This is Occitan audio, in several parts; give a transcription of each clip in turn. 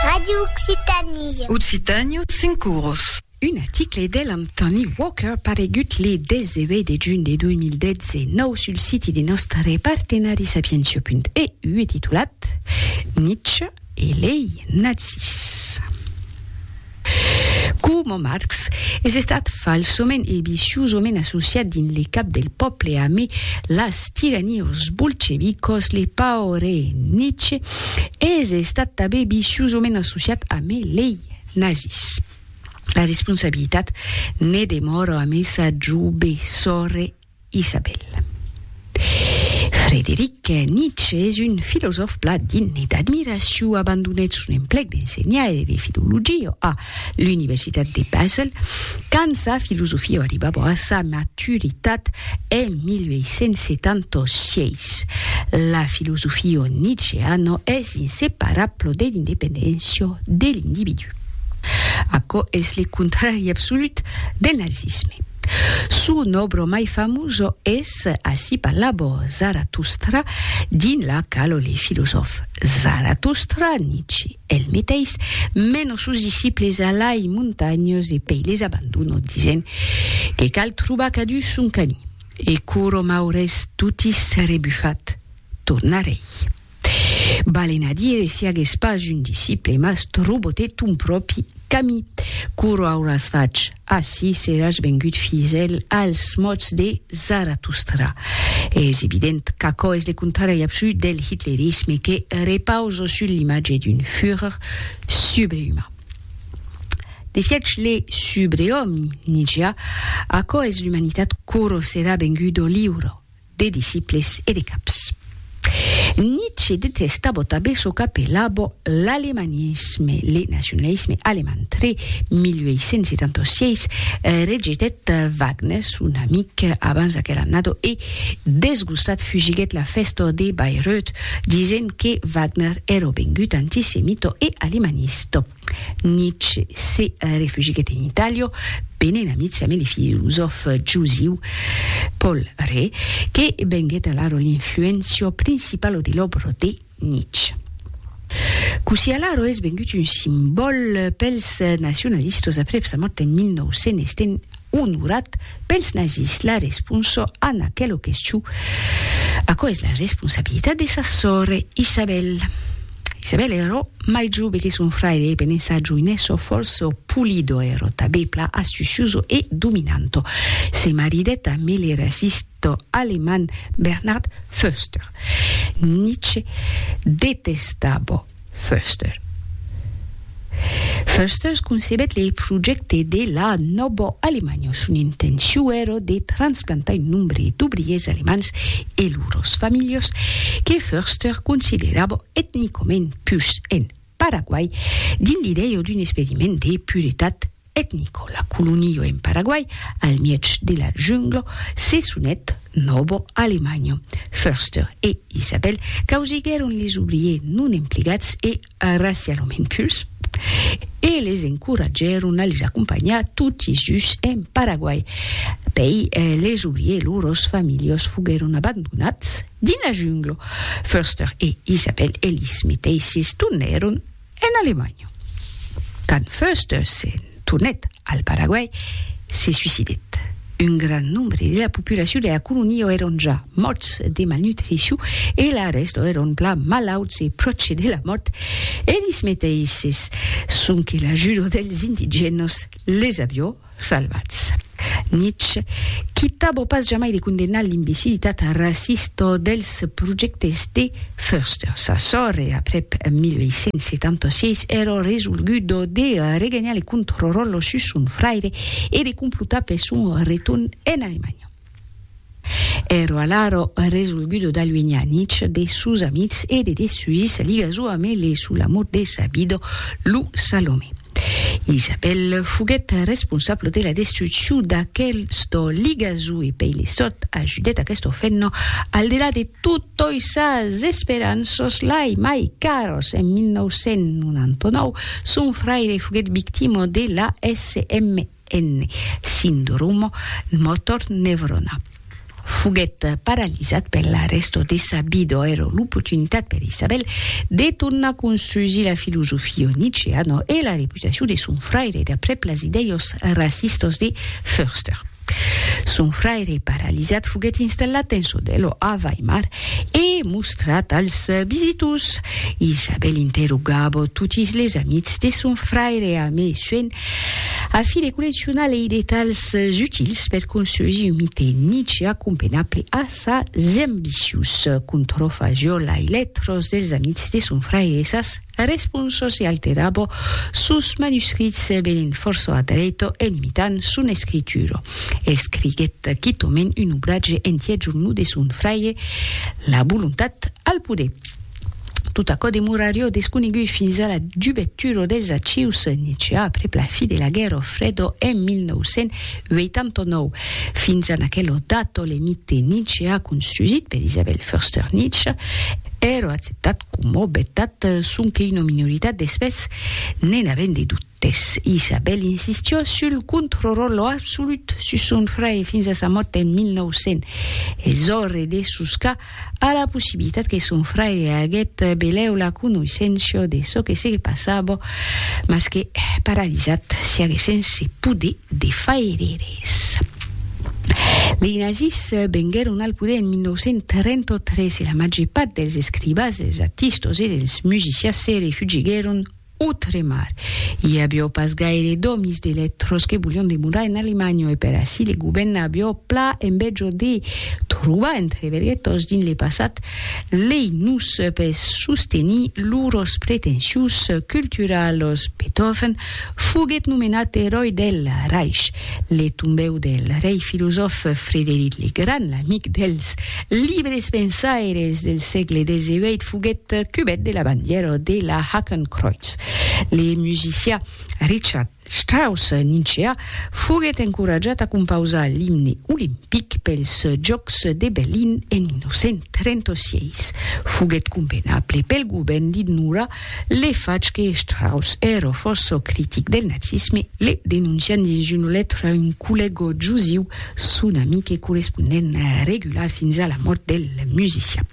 Radio Occitanie. Occitània, cinc oros. Un article de l'Anthony Walker paregut le 18 de junh de 2019 sul siti de nòstre partenari sapientia.eu e titulat Nietzsche e lei nazis. Coma Marx, es estat falsament e viciosament associat dins le cap del pòble amé las tiraniós bolchevicos, le paure Nietzsche es estat tabé viciosament associat amé lei nazis. La responsabilitat ne demòra amé sa joube sòrre Isabel. Frederic Nietzsche es un filosòf plan digne d'admiracion, abandonèt son emplec d'ensenhar e de filologia a l'Universitat de Basel quand sa filosofia arribava a sa maturitat en 1876. La filosofia nietzscheana es inseparabla de l'independéncia de l'individu. Aquò es le contrari absolut del nazisme. Son òbro mai famoso es Así parlavo Zaratustra, dins la quau le filosòf Zaratustra, Nietzsche el meteis, mena sos disciples a lai montanhas e pei les abandona disent que cal trobar cadun son camí. E quoro m'aurés toti rebufat, tornarei. Valen a dire si agues pas un disciple mas trobote ton pròpi cami. Coro auràs fach? Assi seràs vengut fidèl als mots de Zaratustra. Es evident qu'aquò es le contrari absolut del hitlerisme que repausa sul l'imatge d'un Führer subreüman. De fiech le subreòmi, Nietzsche, aquò es l'umanitat coro serà vengut o liuro. de disciples e de caps. Nietzsche detesta bota be çò qu'apela bo l'alemanisme, le nacionalisme alemand. Tre 1876 rejetèt Wagner, son amic abans aquel annado, e desgustat fugiguèt la fèsta de Bayreuth, disent que Wagner èro vengut antisemito e alemanista. Nietzsche se refugiguèt en Itàlia venent amics amb le filosòf jusiu Paul Rée, que venguèt alara l'influéncia principala de l'òbra de Nietzsche. Cossí alara es vengut un simbòl pels nacionalistas aprèp sa mòrt en 1900, estent Onorat, pels nazis la responsa a n'aquela question, aquò es la responsabilitat de sa sòr Isabel. Isabel èra mai jove que son fraire e penent sa joinessa fòrça polida, èra tabé plan astuciosa e dominanta. Se maridèt a 1000 e resistèt. de l'alemand Bernhard Förster. Nietzsche detestava Förster. Förster concebèt le projècte de la Nòva Alemanha. Son intencion èra de transplantar un nombre d'obriers alemands e lors familhas que Förster considerava etnicament pus en Paraguai dins l'idèia d'un experiment de puretat etnico, la colonio en Paraguai al mièg de la junglo se sonèt Novo Alemanho. Förster e Isabel causiguèron les obriers non emplegats e racialament purs e les encoratgèron a les acompanhar toti dus en Paraguai. Pei les obriers lors familhos foguèron abandonats dins la junglo. Förster e Isabel e lis meteisses tornèron En Alemanha, quand Foerster se'n tornèt al Paraguai, se suicidèt. Un grand nombre de la populacion de la colonia èron ja mòrts de malnutricion e la rèsta èron plan malauts e pròche de la mòrt, elis meteisses, sonque l'ajuda dels indigènas les avió Salvatz. Nietzsche, qui tabò pas jamai de condemnar l'imbecilitat racista dels projèctes de Förster. Sa sòrre, aprèp 1876, èra resolguda de reganhar le contròròl sus son fraire e de complotar per son retorn en Alemanha. Ero alaro resolgudo d'aluenhar Nitch de sos amics e de desuir sa liga jo ame le sou l'amor de sa vida, lo Salomé. Isabel foguèt responsablo de la destruccion d'aquesta liga jo e pei le sòrt ajudèt aquesta fenna al delà de totoi sas esperanças lai mai caras. En 1999, son fraire foguèt victima de la SME. en sindroma motor neuronal. Foguèt paralizat per la rèsta de sa vida, èra l'oportunitat per Isabel de tornar construsir la filosofia nietzscheana e la reputacion de son fraire d'aprèp las idèias racistas de Förster. Son fraire paralizat foguèt installat en Sodello a Weimar e mostrat als visitors. Isabel interrogava totis les amics de son fraire a mesuèn A fi de colleccionar lei detalhs utils per construisir un mite Nietzsche acompenable a sas ambicius, contròfa jo lai letros dels amics de son frair e sas responsas e alterabo sos manuscrits venent fòrça a dreito en imitant son escritura. Escriguèt quitòment un obratge entièr jornut de son fraire La volontat al poder. Tot aquò demorarió desconegut fins a la dubetura dels archius nicià aprèp la fi de la Guèrra Freda en 1989. Fins a aquela data, l'emite nicià construsit per Isabel Förster Nietzsche èra acceptat coma vertat sonque una minoritat d'espès ne'n avent de dubtes. Isabel insistió sul controròl absolut sus son fraire fins a sa mòrt en 1900. Es ore de soscar A la possibilitat que son fraire aguet belèu la conoisséncia de çò que se passava, mas que, paralizat, se aguet sense poder de faire res. Lei nazis venguèron al poder en 1933 e la màger part dels escribas, dels artistas e dels musicias se refugiguèron Outremar, i avió pas gaire d'òmis de letras que volion demorar en Alemanha e per aicí le govèrn avió pla envèja de trobar entre verguetas dins le passat lei nus per sostenir lors pretensions culturalas. Beethoven foguèt nomenat eròi del Reich, le tombèu del rei filosòf Frederic le Grand, l'amic dels Libres pensaires del sègle xviii foguèt cubèt de la bandièra de la Hakenkreuz. Le musicià Richard Strauss, ninceà, foguèt encoratjat a compausar l'imne olimpic pels Jòcs de Berlin en 1936. Foguèt convenable pel govèrn d'ignorar Le fach que Strauss èra fòrça critic del nazisme le denoncian dins una letra a un collèga jusiu, son amic e correspondent regular fins a la mòrt del musician.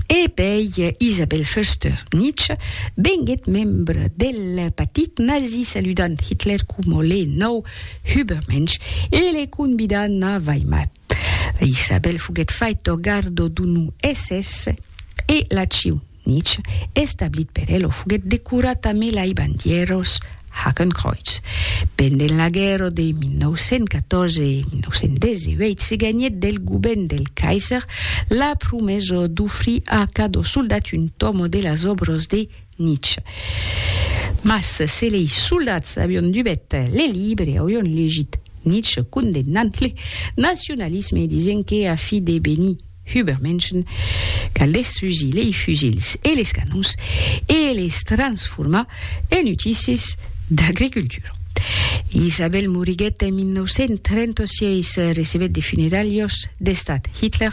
E pei Isabel Förster-Nitsche venguèt membre del partit nazi saludant Hitler coma le nau Hübermensch e le convidant a Weimar. Isabel foguèt fait torgardo d'un SS e la Ciu nich establit per elo foguèt decorat a melai bandièros Hakenkreuz. Pendent la guèrra de 1914 e 1918 se ganhèt del govern del Kaiser la promesa d'ofrir a cadó soldat un tòmo de las òbras de Nietzsche. Mas se lei soldats avion dubet le libre, aurion legit Nietzsche condemnant le nacionalisme e disent que a fi de benir Übermenschen cal destrusir lei fusils e les canons e les transformar en utisses d'agricultura. Isabel moriguèt en 1936, recebèt de funeralhos d'estat Hitler,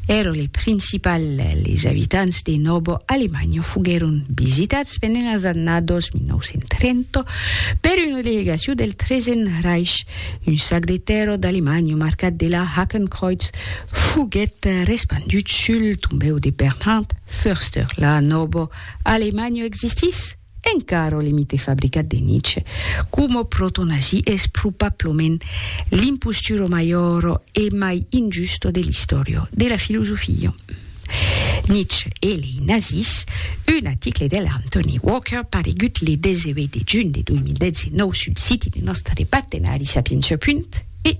èra le principal, les abitants de Novo Alemanho foguèron visitats pendent las annados 1930 per una delegacion del Tresen Reich. Un sac de tèrra d'Alemanho marcat de la Hakenkreuz foguèt respandut sul tombèu de Bernhard Förster. La Novo Alemanho existís? Encara o limite fabricat de Nietzsche coma proto-nazi es probablament l'imposturo maior e mai injusto de l'istòria de la filosofia. Nietzsche e lei nazis, un aticle de l'Anthony Walker paregut le 18 de junh de 2019 sul siti de nòstre partenari Sapientia. E.